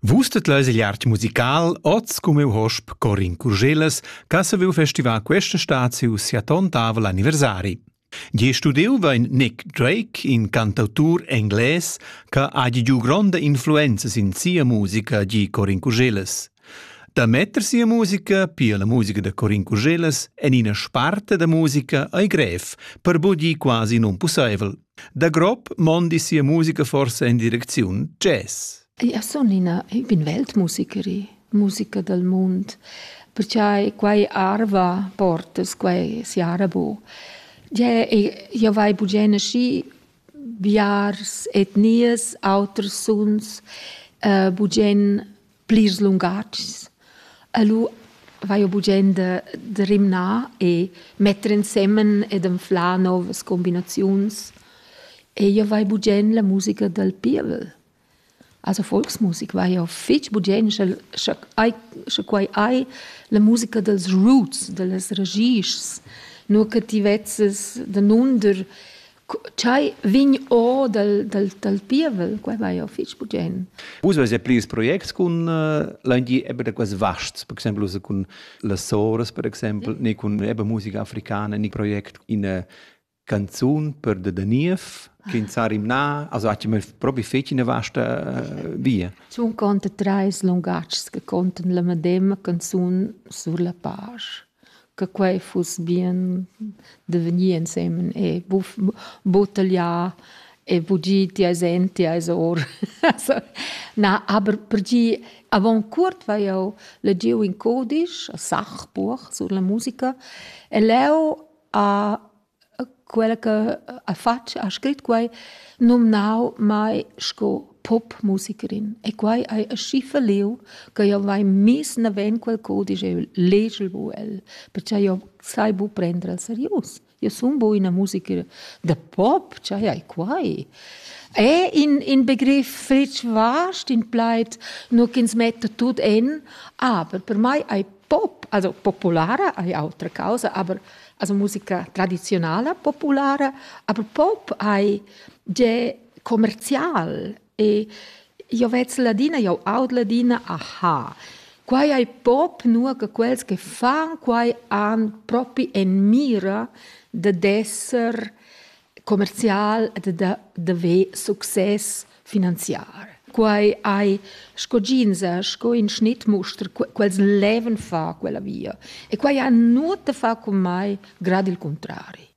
Vus tet leis igl art musical oz come hosp Corin Curgelas, ca se veu festivar questa staziu sia tontavel anniversari. Gie studiu vein Nick Drake, in cantautur engles, ca ha giu gronda influenza sin sia musica, gi Corin Curgelas. Da metter sia musica, pia la musica de Corin Curgelas, en ina sparte da musica ei grev, per bodi quasi non pusseivel. Da grob mondi sia musica forsa in direcziun jazz. Io sun ina, io bin weltmusiceri, musica dal mund, perché quai arva portas, quai si arabo. Io vai bugene schi biars etnias, auters suns, uh, bugen plirs lungatgs. E lu vai jeu bugen da, da rimnar e metter ensemen ed anflar novas combinaziuns. E jeu vai bugen la musica dal pievel. Also Volksmusik vai jeu fetg bugen, sche, sche, ai, sche quei ei la musica dals roots, dallas ragischs, nur che ti vezzes danunder Ch'ei vegn or dal, dal, dal pievel, quei vai jau fitg bugen. Vus avais pli ils projects cun uh, l'angi eben da quels vasts, per exempel cun las soras, per exempel, mm. ne cun eben musica africana, ne project in uh, canzun per de Daniev, che in sarim na, also ha mal propi feci eine vasta uh, via. Sun conta treis lungatgs che contan la medema canzun sur la page. che quei fuss bien da vegnir ensemen e buff buc tagliar e buc gir ti eis en, ti eis or. Na, aber per gir avon cuort vai jeu legiu in codisch, a Sachbuch sur la musica e leu ha Quella che ha fatg, ha scrit quai, numnau mai sco popmusikerin. E quai hai aschi falliu che jeu vai miss naven quel cudisch e legel bu el, pertgei jeu sai bu prender el serius. Jeu sun bu ina musikerin da pop, tgei hai quai? E in, in begriff fetg vast, in plaid, nur ch'ins metta tut en, aber per mei ei pop, also populara ei autra causa, aber also musica tradizionala populara, aber pop hai ge commercial e io vez ladina, io aud ladina aha. Quai ai pop nur che quels che fan quai han propi en mira de d'esser commercial ed da, da ver success finanziar. Quai hai sco ginza, sco in schnittmuster, quels leven fa quella via. E quai ha nuot da far con mai, grad il contrari.